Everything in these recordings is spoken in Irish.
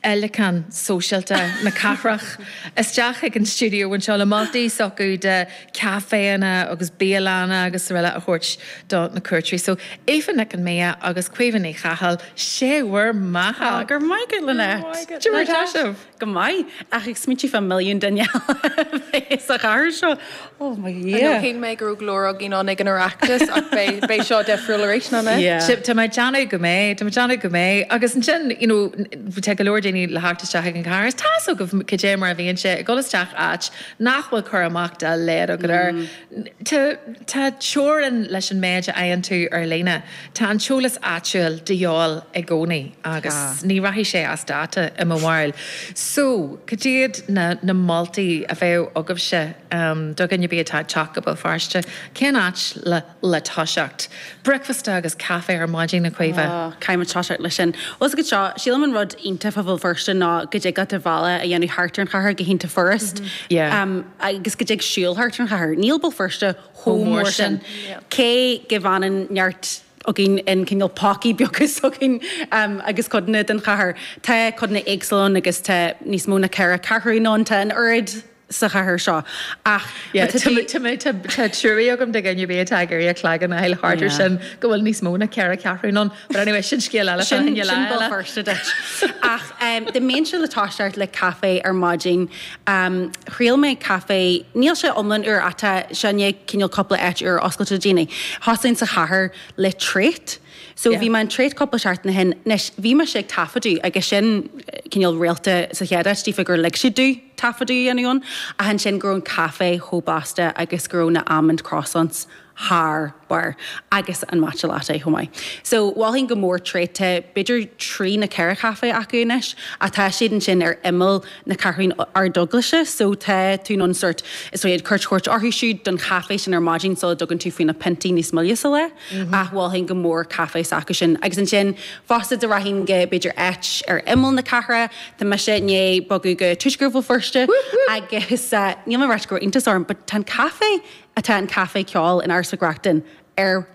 fhéileacán sóisialta na cathrach, isteach ag an stiúideo anseo le moltaí s'acu de chaiféanna agus bialanna agus araile a thabhairt do na cuairteoirí. So, Aoife Nic Con Midhe agus Caoimhe Ní Chathail, sé bhur mbeatha! Go raibh maith agat, Lynette. Cé mar atá sibh? Go maith, ach ag smaointiú fá milliún duine eile a bheith sa chathair seo. Oh mo Dhia! Nó shíl mé go raibh go leor againn ann ag an Oireachtas ach beidh seo difriúil arís, nach mbeidh? Yeah. Tá mé ag déanamh go mbeidh, tá mé ag déanamh go mbeidh. Agus ansin, you know, tá go leor daoine le theacht isteach ag an gcathair, is tá's agaibh cad é mar a bhíonn sé, ag dul isteach áit nach bhfuil cur amach dá laghad agat air. Tá teorainn leis an méid a fhaigheann tú ar líne. Tá an t-eolas áitiúil de dhíobháil i gcónaí agus Tá. ní rachaidh sé as dáta i mo bharúil. So, cad iad na na moltaí a bheadh agaibhse do dhuine ar bith atá ag teacht go Béal Feirste? Cén áit le le toiseacht? Bricfeasta agus caife ar maidin, a Chaoimhe? Oh, caithfidh muid toiseacht leis sin. Fhios agat seo, sílim an rud iontach fá Bhéal Feirste ná go dtig leat do bhealach a dhéanamh thart ar an chathair go hiontach furast. Yeah. Agus go dtig siúl thart ar an chathair. Níl Béal Feirste. chomh mór sin. Cé go bhfanann neart againn in cineál pócaí beaga s'againn agus codanna den chathair, tá codanna éagsúla ann agus tá níos mó ná ceithre ceathrúin ann, tá an oiread sa chathair seo ach má tá tú. Tá trua agam do dhuine ar bith atá ag iarraidh a chloigeann a fháil thart ar sin go bhfuil níos mó ná ceithre ceathrúin ann but anyway sin scéal eile fá choinne lá eile. Sin Béal Feirste duit. Ach dá mbeinnse le toiseacht le caife ar maidin Am, Thriail mé caife. Níl sé iomlán úr ach tá sé i ndiaidh, cineál cúpla áit úr a oscailt do dhaoine. Thosaím sa chathair le Trait. So bhí mé in Trait cúpla seachtain ó shin. Anois, bhí mise ag taifeadadh agus sin cineál réalta sa chéad áit díofa gur lig siad domh taifeadadh a dhéanamh ann. Ach ansin go raibh an caife chomh blasta agus go raibh na almond croissants thar barr. Agus an matcha latte chomh maith. So, mholfainn go mór Trait, tá b'fhéidir trí nó ceithre chaife acu anois, ach tá siad ansin ar imeall na Ceathrún Ardeaglaise, so tá tú in ann sort, is dóigh, cuairt a thabhairt orthu siúd don chaife sin ar maidin sula dtugann tú faoi na piontaí níos moille sa lá. Ach mholfainn go mór caife s'acu sin. Agus ansin fosta dá rachainn go, b'fhéidir áit ar imeall na cathrach, tá mise i ndiaidh bogadh go Tuaisceart Bhéal Feirste agus níl mé ag ráit go raibh iontas orm but tá an caife atá in Caifé Ceoil in Áras Mhic Reachtain ar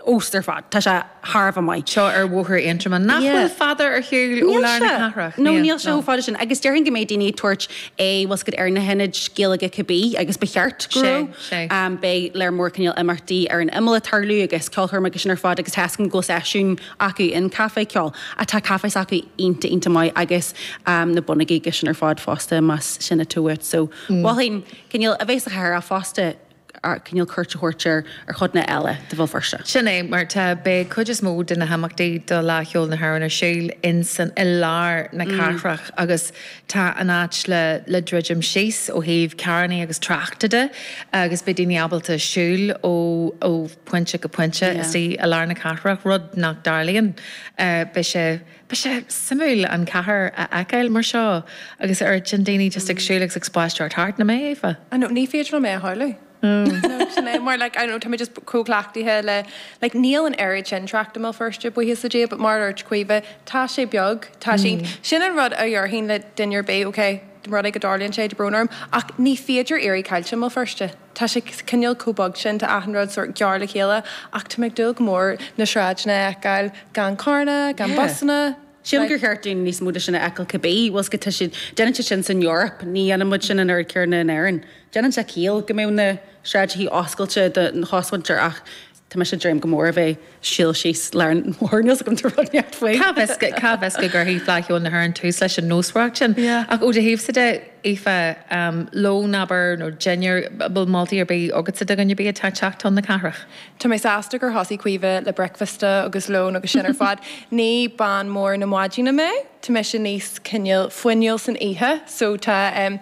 fheabhas ar fad. Tá sé thar a bheith maith. Seo ar Bhóthar Aontroma. Nach bhfuil fada ar shiúl ó lár na cathrach? Níl sé. No, níl sé chomh fada sin. Agus déarfainn go mbeidh daoine ag tabhairt aghaidh, bhfuil's agat, ar na hionaid Gaeilge cibé agus ba cheart go raibh. Sé, sé. Beidh lear mór cineál imeachtaí ar an imeall ag tarlú agus ceolchoirme agus sin ar fad agus tá's agam go bhfuil seisiún acu in Caifé Ceoil. Ach tá café s'acu iontach, iontach maith agus na bonnógaí agus sin ar fad fosta más sin atá uait. So mholfainn. Cineál a bheith sa chathair ach fosta cineál cuairt a thabhairt ar chodanna eile de Bhéal Feirste. Sin é mar tá. Beidh cuid is mó de na himeachtaí do Fhleadh Cheoil na hÉireann ar siúl insan i lár na cathrach agus tá an áit le le druidim síos ó thaobh carrannaí agus tráchta de agus beidh daoine ábalta siúl ó ó phointe go pointe istigh i lár na cathrach, rud nach dtarlaíonn. Beidh sé. Beidh sé suimiúil an chathair a fheiceáil mar seo agus na daoine just ag siúl agus ag spaisteoireacht thart, nach mbeidh, Aoife? I know, ní féidir liom é a shamhlú. No, sin é, mar like, I know, tá mé just chomh cleachtaithe le, like, níl an oiread sin trácht i mBéal Feirste, buíochas le Dia, but mar a dúirt Caoimhe, tá sé beag, tá sé, sin an rud a dhéarfainn le duine ar bith, ok, más rud é go dtarlaíonn sé, tá brón orm, ach ní féidir éirí caillte i mBéal Feirste. Tá sé cineál chomh beag sin, tá achan rud sórt gar le chéile ach tá mé ag dúil go mór na sráideanna a fheiceáil gan carranna, gan busanna. Sílim gur cheart dúinn níos mó de sin a fheiceáil cibé, bhfuil 's agat, tá siad, déanann siad sin san Eoraip, ní dhéanann muid sin an oiread céanna in Éirinn. Déanann sé ciall go mbeadh na sráideachaí oscailte don chosmhuintir ach. Tá mise ag dréim go mór a bheith siúl síos lár an bhóthair níl 's agam cad rud neart faoi. Cá bhfios, cá bhfios go gcuirfidh Fleadh Cheoil na hÉireann tús leis an nósmhaireacht sin. Yeah. Ach ó do thaobhsa de, Aoife, lón, abair, nó dinnéar, bhfuil moltaí ar bith agatsa do dhuine ar bith atá ag teacht chun na cathrach? Tá mé sásta gur thosaigh Caoimhe le bricfeasta agus lón agus sin ar fad. Ní bean mhór na maidine mé, tá mise níos cineál fuinniúla san oíche, so tá, em,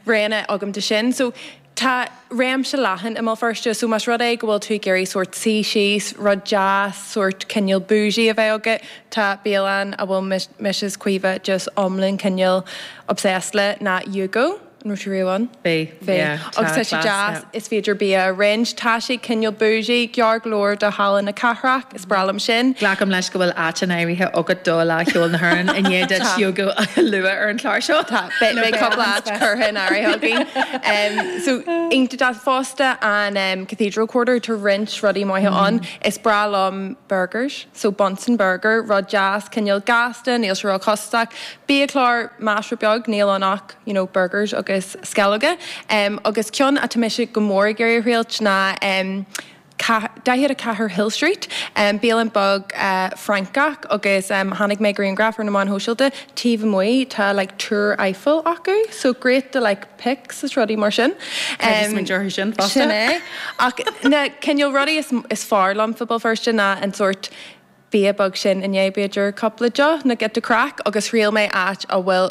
roghanna agam do sin. So. Tá réimse leathan i mBéal Feirste so más rud é go bhfuil tú ag iarraidh sórt suí síos, rud deas, sórt cineál bougie a bheith agat, tá bialann a bhfuil mise is Caoimhe just iomlán cineál obsessed leis ná Yugo. An raibh tú riamh ann? Bhí, Bhí. yeah. Agus Tá tá sé class, yeah. deas, is féidir bia a roinnt. Tá sé cineál bougie, gar go leor do Halla na cathrach. Ba bhreá liom sin. Glacaim leis go bhfuil áit in áirithe agat do Fhleadh Cheoil na hÉireann i ndiaidh duit Yugo a lua ar an chlár seo? Tá. Beidh cupla áit curtha in áirithe againn. So, ansin fosta an Cathedral Quarter, tá roinnt rudaí maithe ann. Is breá liom burgers, so Bunsen Burger, rud deas, cineál gasta, níl sé róchostasach. Biachlár, measartha beag, níl ann ach you know burgers agus sceallóga. Agus ceann atá mise go mór ag iarraidh a thriailt ná. 44 Hill Street, bialann beag Francach agus chonaic mé grianghraf ar na meáin shóisialta taobh amuigh tá like Túr Eiffel acu so great do like pics is rudaí mar sin. Creidim smaointe ar sin fosta. Sin é. Ach na cineál rudaí is is fearr liom faoi Bhéal Feirste ná an sórt bia beag sin i ndiaidh b'fhéidir cúpla deoch like the craic agus thriail mé áit a bhfuil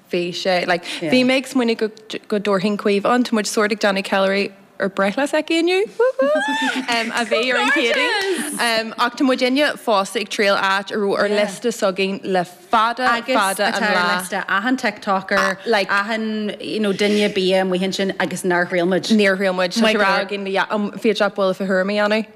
bhí sé like bhí mé ag smaoineamh go go dtabharfainn Caoimhe ann tá muid sórt ag déanamh ceiliúradh ar breithlá s'aici inniu woo hoo a bhí ar an gCéadaoin ach tá muid inniu fosta ag triail áit a raibh ar liosta s'againn le fada fada an lá agus atá ar liosta achan TikToker like achan you know duine bia amuigh ansin agus nár thriail muid. níor thriail muid so tá rá againn le yeah bígí i dteagmháil fá thuairimí annamh.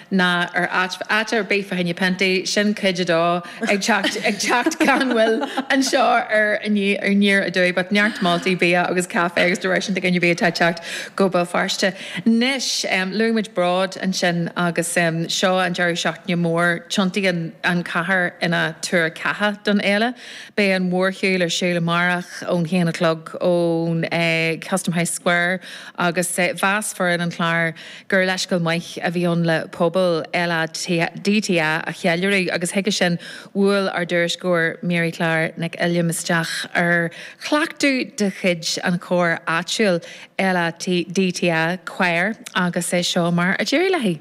ná ar áit fá áit ar bith fá choinne piontaí, sin cuid a dó, ag teacht, ag teacht gan mhoill anseo ar Aniar, ar Aniar Aduaidh, but neart moltaí bia agus caife agus de réir sin, do dhuine ar bith atá ag teacht go Béal Feirste. Anois, luaigh muid Bród ansin agus seo an deireadh seachtaine mór, tiontaíonn an chathair ina tuar ceatha don fhéile. Beidh an mhórshiúl ar siúl amárach ón haon a chlog ón Custom House Square agus mheas foireann an chláir, gur leithscéal maith a bhí ann le pobal LADTA a cheiliúradh agus chuige sin bhuail ár dtuairisceoir Mary Clár Nic Uilliam isteach ar chleachtadh de chuid an chóir áitiúil LADTA Quire agus é seo mar a d'éirigh léi.